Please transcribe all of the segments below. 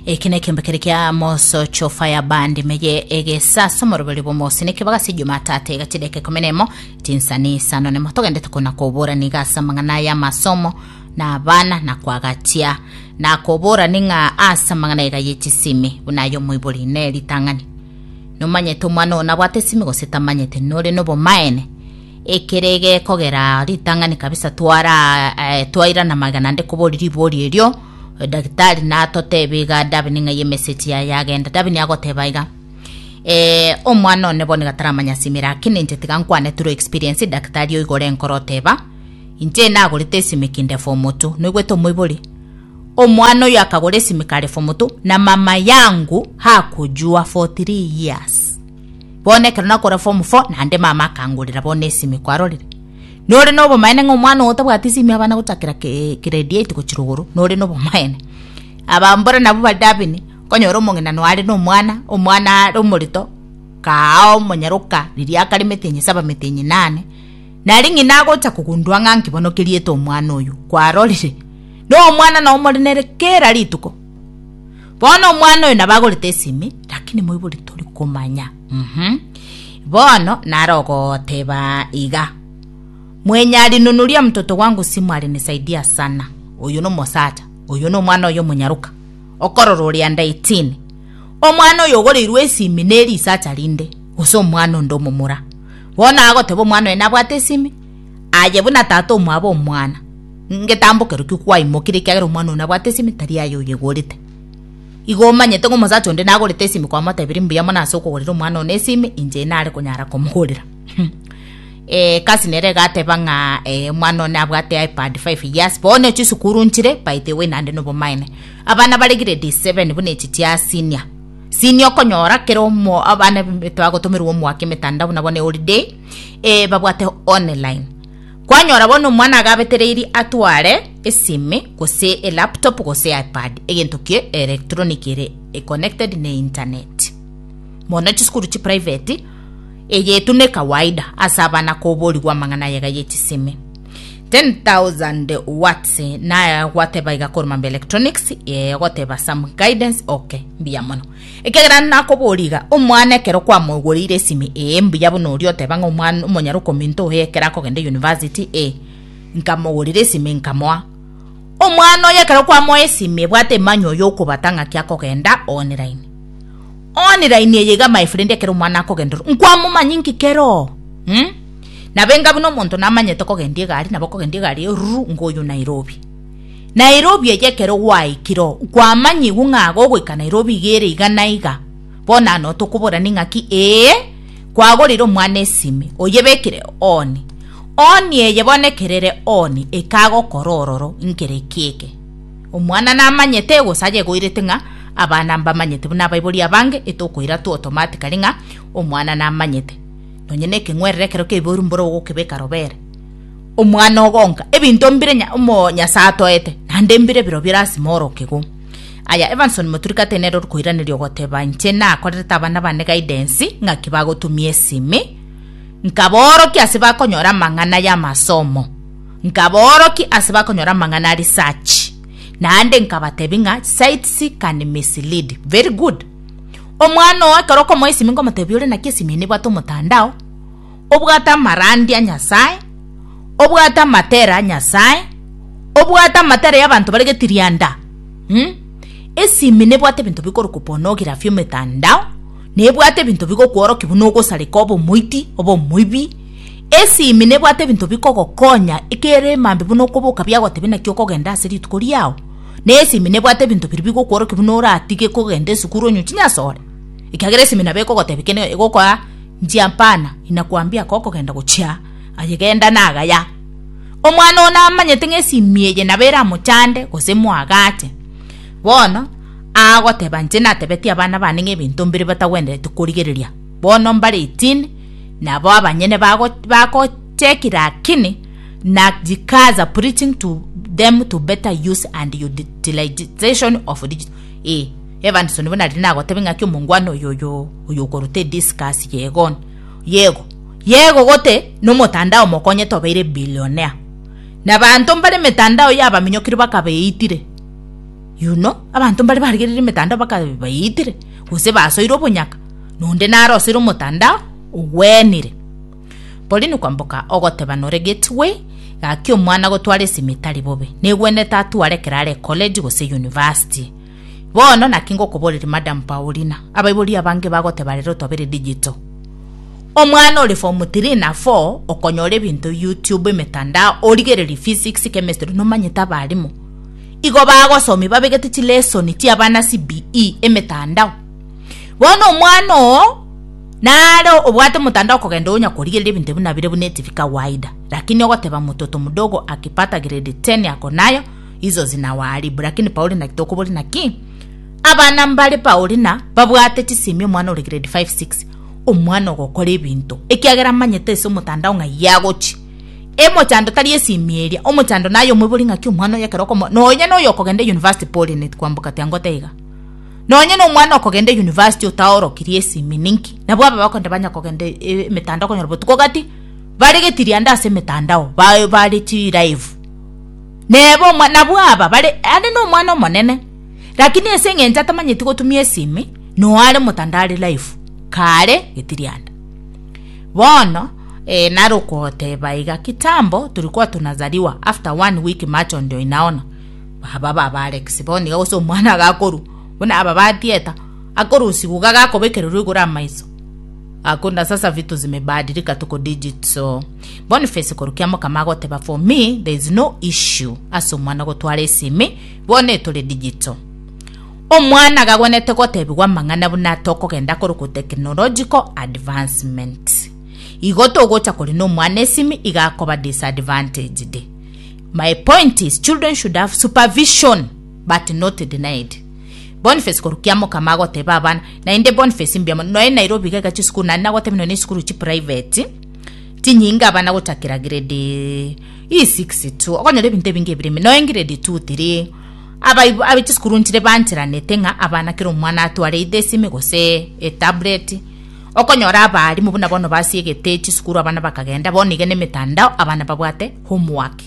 Eki nekembe kere kia mosocho fire band meye egesa somoroberi bomosi nekebaga si jumatatu egati deke kumi nemo tinsani sano nemo togende tukona kobora niga asa mang'ana ya masomo na abana na kwagatia na kobora ning'a asa mang'ana ega yechisimi buna ayo moibori ne ritang'ani nomanyete omwana ona bwate simi gose tamanyete nore nobomaene Ekere gekogera ritang'ani kabisa twairana magena nde kobori ribori erio, edagitari natoteba iga Davin ng'a eye emesegi yaye yagenda. Davin agoteba iga, eh, omwana one bono iga taramanya ase ime lakini inche tiga nkwane through experience edagitari oiga ore enkoro oteba, inche nagorete esimi kinde form two, noigwete omoibori? Omwana oyo akagora esimi kare form two na mama yangu hakojua for three years. Bono ekero nakora form four naende mama akangorera bono esimi kwarorire nore na obomaene ng'a omwana ogo tabwati esimi abana gochakera ke grade eight gochia rogoro nore na obomaene aba mbore nabwo bare dabini okonyora omong'ina nonya are na omwana omwana are omorito kaao omonyaroka riria akare emete enye saba emete enye nane nari ng'ina agocha kogundua ng'a nki bono keriete omwana oyo kwarorire na omwana nao more nere kera rituko. Bono omwana oyo nabagorete esimi, lakini moibori tori komanya. Mhm. Bono nare ogoteba iga. Mwenyari nunuria mtoto wangu simu alinisaidia sana. Oyo no mosacha. Oyo no mwana oyo munyaruka. Okorora ori under 18. Omwana oyo ogoreirwe esimi neri isacha rinde. Gose omwana onde omomura. Bono agoteba omwana oyo nabwate esimi. Aye buna tata omwabo omwana, ngetambo kerokio kwaimokire ekiagera omwana oo nabwate esimi tari aye oyegorete. Igo omanyete ng'a omosacha onde nagorete esimi kwamotebire mbuya mono ase okogorera omwana one esimi inche nare konyara komogorera. Ee egasi nere egateba ng'a ee omwana one abwate ipad five years bono chisukuru nchire by the way naende nobomaene. Abana bare grade seven buna echi chia senior. Senior okonyora kera omo abana twagotomerwa omwaka emetanda buna bono eholiday eh, babwate online kwanyora bono omwana agabetereiri atware esime gose elaptop gose ipad egento kie electronic ere e connected ne internet mono chisukuru chi private eyetu ne kawaida ase abana koborigwa amang'ana yega ye chisime 10000 watts naya gwateba iga koruma mbe electronics eh, ogoteba some guidance okay mbuya mono Ekiagera nakoboria iga, omwana ekero kwamoigoreire esimi, ee, mbuya buna oria oteba ng'a omwana omonyare okominto oyo ekero akogenda University, ee, nkamogorera esimi nkamoa. Omwana oyo ekero kwamoa esimi ebwate emanywa oyo okobata ng'aki akogenda online. Online eye iga my friend ekero omwana akogenda ororo, nkwamomanyi inki keroo? Mh? Nabenga buna omonto namanyete kogenda egari, nabo okogenda egari ororo, ngoyio Nairobi. Nairobi eye ekero gwaikire oo kwamanyigwe ng'a gogoika Nairobi iga ere iga na iga, bono ano tokobora ning'aki ee kwagorire omwana esimi oyebekire ooni ooni eye bono ekero ere ooni ekagokora ororo nkere eki eke. Omwana namanyete gose aye egoirete ng'a abana mbamanyete buna abaibori abange etokoira tu automatically ng'a omwana namanyete. Nonye na ekeng'werere ekero keiboirwe mbore ogokebeka robere. omwana ogonka, ebinto mbire Nyasae atoete, naende mbire birobio erasime ore okegwa. Aya Evanson Moturikate nere ore koiraneria ogoteba inche nakorerete abana bane guidance ng'aki bagotumia esimi, nkaboorokia ase bakonyora amang'ana y'amasomo, nkaboorokia ase bakonyora amang'ana a research, naende nkabatebia ng'a sites can mislead. Very good. Omwana oo ekero okomoa esimi nkomotebia ore naki esimi eye nebwate omotandao, obwate amarandia Nyasae, obwate amatera Nyasae, obwate amatera y'abanto bare getirianda um, esimi nebwate ebinto bikorokwa pornography emetandao, nebwate ebinto bigokworokia buna ogosareka obe omoiti, obe omoibi, esimi nebwate ebinto bikogokonya ekere emambe buna okoboka biagotebia naki okogenda ase rituko riao, na esimi nebwate ebinto biria bigokworokia buna oratige kogenda esukuru onye ochinyasore, ekiagera esimi nabo ekogotebia kende egokoa. Nchia mpana, inakwambia aka okogenda gochia aye genda nagaya. Omwana oo namanyete ng'a esimi eye nabo eramochande gose emoagache. Bono agoteba inche natebetie abana bane ng'a ebinto mbire batagwendereti korigereria, bono mbare etini, nabo abanyene bago bagocheki lakini na jikazi are preaching to them to better use and utilization of digital ee. Evanso nigo nariri nagotebe ng'aki omongwana oyo oyo oyo okoruta ediscus yegon yego yego gote nomotandao mokonyete obeire billionaire na banto mbare emetandao yabaminyokire bakabeitire you know abanto mbare barigerire emetandao bakabeitire gose basoire obonyaka nonde naro osoire omotandao ogwenire Pauline kwamboka ogoteba nore gateway gaki omwana gotwara esimi etari bobe negwenete atware ekero are college gose university Bono naki ngokoboreria, Madam Paulina, abaibori abange bagoteba rero otobere digital. Omwana ore form three na four okonyora ebinto YouTube, emetandao, origererie physics, chemistry, nomanyete abarimu igo bagosomia babegete chilesoni chiabana CBE emetandao. Bono omwana oo nare obwate omotandao okogenda onya korigereria ebinto ebio nabire buna etibi kawaida, lakini ogoteba mototo mdogo akipata grade ten akonayo Izo zinawaribu, lakini pauri naki tokobori naki? Abana mbare pauri na babwate chisemi omwana ore grade 5 6 omwana ogokora ebinto ekiagera amanyete ase omotandao ng'a yagochi emochando tari esimi eria omochando naye omobori ng'aki omwana oyo ekero okomo nonya noyo okogenda university pori net kwambuka kwambukatia ngote iga nonya na omwana okogenda university otaorokirie esimi ninki nabwo aba bakonde banya kogenda e- e- emetandao konyora botuko gati baregetirie ande ase emetandao ba- bare chi live Neba omwa, nabwo aba bare are nomwana omonene, lakini ase eng'encho atamanyeti gotumia esimi, no are motandare live, kare getirianda. Bono eh, narokoteba iga kitambo turikuwa tunazaliwa after one week macho ndio inaona baba baba Alex bono iga gose omwana agakorwa buna aba ba theater akorusigwa iga gakobekererwa igoro amaiso hakuna sasa vitu zimebadilika tuko digital Boniface korwa Kiamokama agoteba for me there is no issue ase omwana gotwara esimi bono etore digital. Omwana gagwenete gotebigwa amang'ana buna tokogenda korokwo technological advancement. Igo togocha kori na omwana esimi iga akoba disadvantaged. My point is children should have supervision but not denied. Boniface korwa Kiamokama agoteba abana naende Boniface mbiamo noe Nairobi iga iga chisukuru naende nagoteba noe na esukuru chi private Chinyinga abana gochakera grade isix tu okonyora ebinto ebinge ebire ime nonya grade two three abaibo aba chisukuru nchire bancheranete ng'a abana kera omwana atware either esime gose etablet okonyora abaarimwa buna bono basiegete chisukuru abana bakagenda bono iga nemetandao abana babwate homework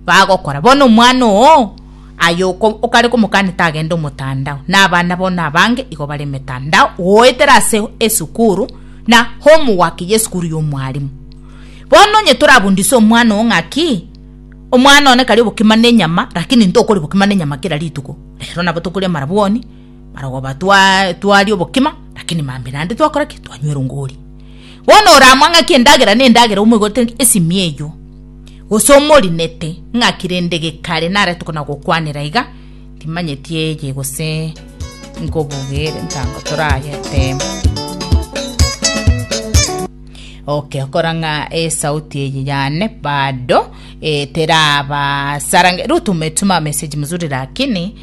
bagokora bono omwana oo. Aye okare komokania tagende omotandao, na abana bono abange igo bare emetandao goetera ase esukuru na homework y'esukuru y'omwalimu. Bono onye torabundise omwana oo ng'a ki? Omwana one kare obokima nenyama, lakini ntokori bokima nenyama kera rituko. Rero nabo tokoria amarabwoni. Barabwo batwa- twaria obokima, lakini maambia naende twakora ki? Twanywera ongori. Bono oramang'aki endagera nendagera omoigote ng'a esimia eyio, gose omorinete ng'aki rende gekare narete kona gokwanera iga, timanyeti eye gose nkobogere ntango torageteba. Okay, okora ng'a esauti eye yane bado eh, terabasarange rutume tuma message mzuri lakini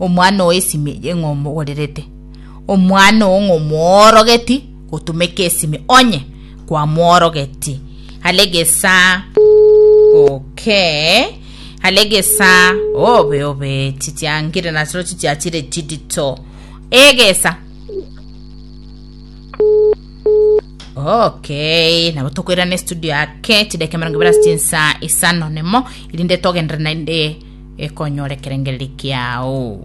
Omwana oo esimi eye ng'a omogorerete, omwana oo ng'a omworogeti gotumeka esimi onye kwamworogeti. Hale gesa okay hale gesa obe obe chichiangire nasiro chichiachire chidito egesa okay nabo tokoirana estudio ake chideka emerongo ibere ase chinsa isano nemo erinde togenderere naende konyora ekerengererio kiao.